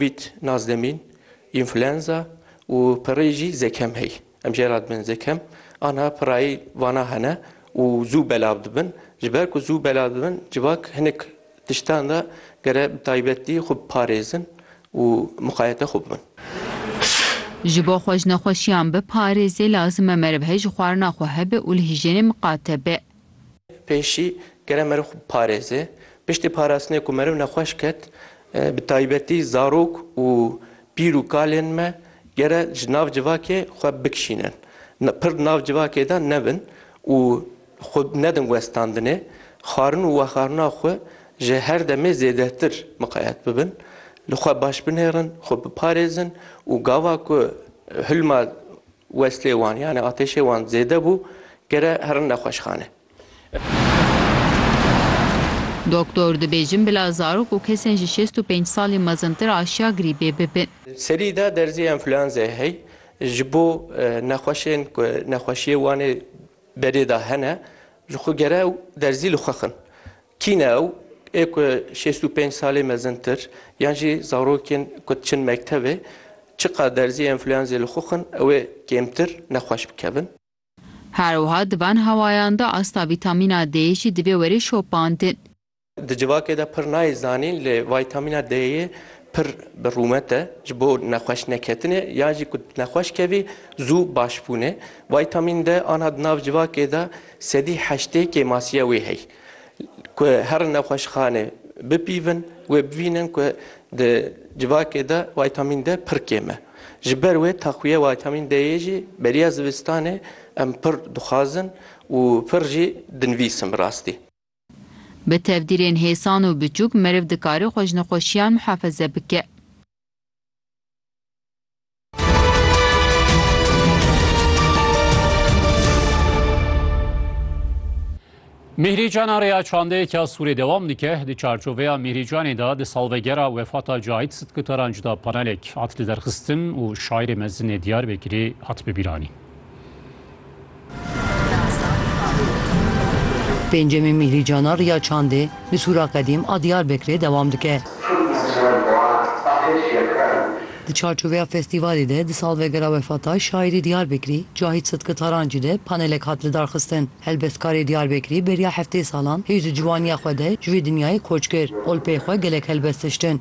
Covid nas demîn, înfluenza û pirrî jî zekem hey. Em jê re dibin zekem. Aniha pirrayî vana hene û zû belav dibin. Ji ber ku zû belav dibin civak hinek tiştan de gere bi taybetî xwe biparêzin û miqayete xwe bibin. Ji bo xwe ji nexweşiyan biparêzê lazim e meriv hey ji xwarina xwe hebe û li hîjênê miqate be. Pêşî kere meriv xwe biparêze. Piştî parastinê ku meriv nexweş ket, bi taybetî zarok û pîr û kalên me kere ji nav civakê xwe bikişînin. Pir nav civakê de nebin û xwe nedin westandinê. Xwarin û wexarina xwe ji her demê zêdetir miqayet bibin. Li xwe baş binêrin, xwe biparêzin û gava ku hilma Westê wan yanî atêşê wan zêde bû, gere herin nexweşxane. Doktor, Dibêjin bila zarok û kesên ji şêst û pênc salî mezintir aşiya grîbê bibin. Serî de derzê enfluenzayê hey ji bo nexweşên ku nexweşiyê wan ê berê de hene ji xwe gere ew derzî li xwe xin. Kî ne ew? Ê ku şêst û pênc salê mezintir yan jî zarokên ku diçin mektebê çiqas derzî enfluenzê li xwe xwin ew ê kêmtir nexweş bikevin. Her wiha di van hewayan de asta vîtamîna D'ê jî divê were şopandin. Di civakê de pir nayê zanîn lê vîtamîna D'ê pir bi rûmet e ji bo nexweş neketinê yan jî ku nexweş kevî zû baş bûnê. Vîtamîn D aniha di nav civakê de sedî heştê kêmasiya wê heye. Ku her nexweşxanê bipîvin wê bivînin ku di civakê de wîtamîn D pir kêm e. Ji ber wê taxwiya wîtamîn D'yê jî beriya zivistanê em pir dixwazin û pir jî dinivîsim bi rastî. Bi tevdîrên hêsan û biçûk meriv dikare xwe ji nexweşiyan mihafeze bike. Mîhrîcana rêya çandeyeke ya Sûrê dewam dike. Di çarçoveya Mîhrîcanê de di salvegera wefata Cahit Sitkitaran cuda panelek hat liderxistin û şairê mezin ê Diyarbekirê hat bibîranîn. Pêncemîn Mîhrîcana Riya Çandê li Sûra Qedîm a Diyarbekirê dewam dike. Di çarçoveya festîvalê de di salvegera wefata şaîrê Diyarbekirî Cahît Sidki Tarancî de panelek hat lidarxistin. Helbestkarê Diyarbekirî beriya heftê salan hêj di ciwaniya xwe de ji vê dinyayê koç kir û li pey xwe gelek helbest hiştin.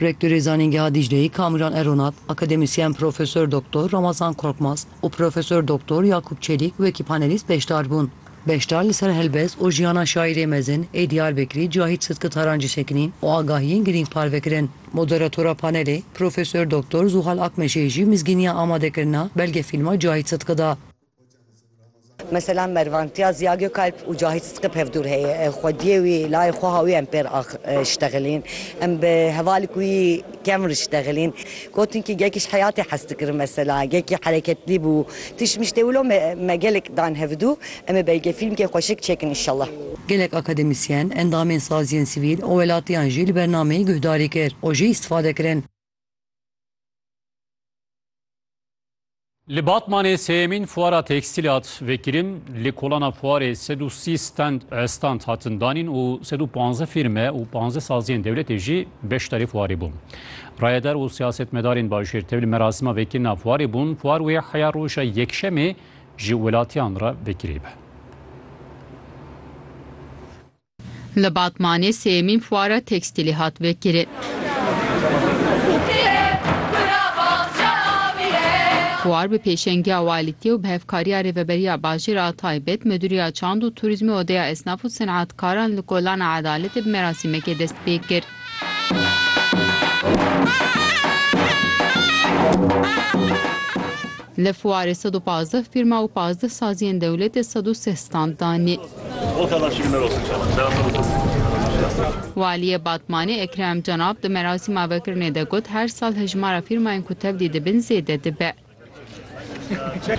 Rektörê Zanîngeha Dîcleyê Kamîran Eronat, akademîsyen Profesor Doktor Ramazan Korkmaz û Profesor Doktor Yakûp Çelîk wekî panelîst beşdar bûn. Beşdar li ser helbest û jiyana şaîrê mezin ê Diyarbekirî Cahît Sidki Taran jî sekinîn û agahiyên girîng parve kirin. Moderatora panelê Profesor Doktor Zuhal Akmeşê jî mizgîniya amadekirina belgefîlma Cahît Sidki da. Mesela Mervan Tya, Ziya Gökalp û Cahit Sıtkı pevdûr heye. Ev xwediyê wî layê xwe ha wî em pêr riştexilîn. Em bi hevalî ku wî kem riştexilîn. Gotin kî gekî ji heyatê hez dikirin mesela. Gekî hereketlî bû. Tiştmiştê wilo me me gelek dan hevdu. Em ê belge fîlmkê xweşik çêkin înşellah. Gelek akademisyen, endamên saziyên sivîl û welatiyan jî li bernameyê guhdarî kir û jê îstifade kirin. Li Batmanê sêyemîn fuara tekstîlê hat vekirin. Li kolana fuarê sed û sî stand hatin danîn û sed û panzdeh fîrme û panzdeh saziyên dewletê jî beşdarî fuarê bûn. Rayedar û siyasetmedarên bajêr tevli merasima vekirina fuarê bûn. Fuar wê heya roja Yekşemê ji welatiyan re vekirî be. Li Batmanê sêyemîn fuara tekstîlê hat vekirin. Fuar bi pêşengiya Walîtî û bi hevkariya Rêveberiya Bajêr a Taybet, Midûriya Çand û Turîzmê Odeya Esnaf û Senatkaran li Kolana Edaletê bi merasîmekê dest pê kir. Li fuarê sed û pazdeh fîrma û pazdeh saziyên dewletê sed û sih stand danî. Waliyê Batmanê Ekrem Cenab di merasîma vekirinê de got, her sal hejmara fîrmayên ku tevlî dibin zêde dibe.